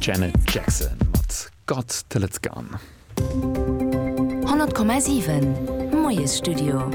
Janet Jackson mat Got Till It's Gone. 100,7 Moiesstudio.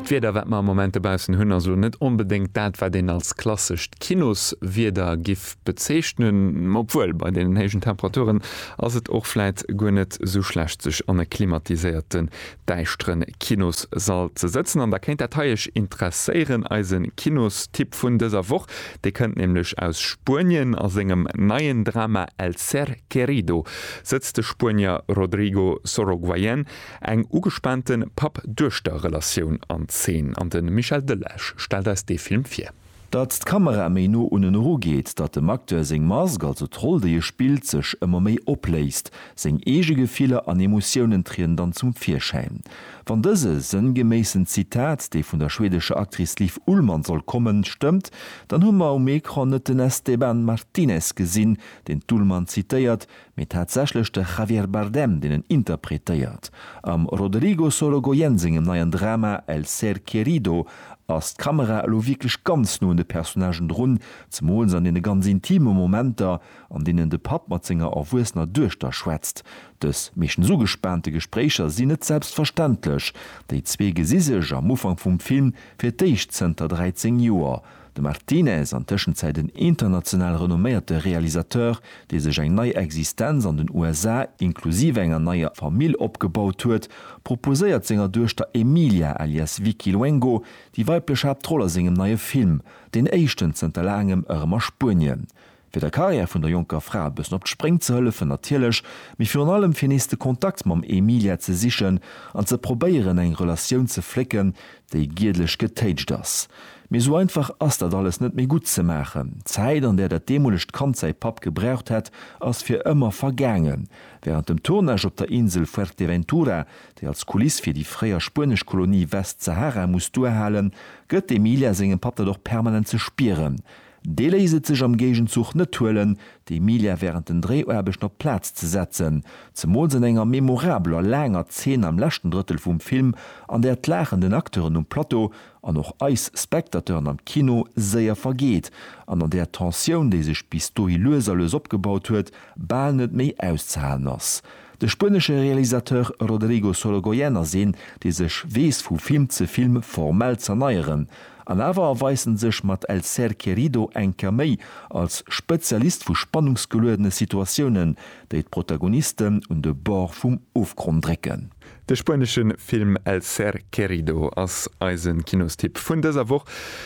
D'Wieder, wat mer am Moment dobaussen hunn, ass elo net onbedéngt dat, wat een als klassescht Kinoswieder giff bezeechnen. Obwuel, bei deenen héijen Temperaturen ass et och vläit guer net esou schlecht, sech an e klimatiséierte däischteren Kinossall ze sëtzen an da kéint dat hei iech interesséieren. Eise Kinosstipp vun dëser Woch, dee kënnt nämlech aus Spuenien. A sengem neien Drama El ser querido sëtzt de Spuenier Rodrigo Sorogoyen eng ugespaante Papp-Duechter-Relatioun an Zeen an de Michel Delage stellt eis dee Film vir. Datt d'Kamera méi no unnen eru geet, datt dem Acteur seng Mask, also d'Roll déi e spillt, sech ëmmer méi opléist, seng eege Gefiller an Emotiounen trieden dann zum Virschäin. Wann dëse sënngeméissen Zitat, dee vun der schwedescher Actrice Liv Ullmann soll kommen, stëmmt, dann hu mer um Ecran net den Esteban Martinez gesinn, deen d'Ullmann zitéiert, Mee tatsächlech de Javier Bardem, deen en interpretéiert. Am Rodrigo Sorogoyen sengem neien Drama El ser querido ass d'Kamera elo wierklech ganz no un de Personnagen drun, zemools an deene ganz intime Momenter, an deenen de Papp mat senger erwuessener Duechter schwätzt. Dës meeschtens ugespaante Gespréicher sinn net selbstverständlech. Déi zwee gesi sech am Ufank vum Film fir d'éischt zënter 13 Joer. De Martinez, an Tëschenzäit en international renomméierte Realisateur, dee sech eng nei Existenz an den USA, inklusiv enger neier Famill, opgebaut huet, proposéiert senger Duechter Emilia alias Vicky Luengo déi weiblech Haaptroll a sengem neie Film, deen éischten zënter laangem, erëm a Spuenien. fir der Karriär vun der jonker Fra e bëssen op d'Spréng ze hëllefen natierlech, mee virun allem fir nees de Kontakt mam Emilia ze sichen an ze probéieren eng Relatioun ze flécken, déi giedlech getéitscht ass. Mee esou einfach ass dat alles net méi gutt ze maachen. D'Zäit an där dat deemolegt Kand säi Papp gebraucht hätt, ass fir ëmmer vergaangen. Wärend dem Tournage op der Insel Fuerteventura, déi als Kuliss fir déi fréier spuenesch Kolonie Westsahara muss duerhalen, gëtt d'Emilia sengem Papp dat och permanent ze spieren, Dee léisst et sech am Géigenzuch net huelen, d'Emilia wärend den Dréiaarbechten op d'Plaz ze setzen, zemools an enger memorabeler, laanger Zeen am leschten Drëttel vum Film, an där d'Laachen den Acteuren um Plateau an och eis Spectateuren am Kino séier vergeet an an där d'Tensioun, déi sech bis dohi lues a lues opgebaut huet, bal net méi auszehalen ass. De spuenesche Realisateur Rodrigo Sorogoyen ass een, dee sech weess vu Film ze Film formell z'erneieren. An awer erweist en sech mat El ser querido eng Kéier méi als Spezialist vu spannungsgeluedene Situatiounen, déi d'Protagonisten un de Bord vum Ofgronn drécken. De spuenesche Film El ser querido ass eise Kinostipp vun dëser Woch.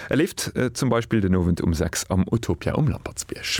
E leeft zum Beispill den Owend um 6 am Utopia um Lampertsbierg.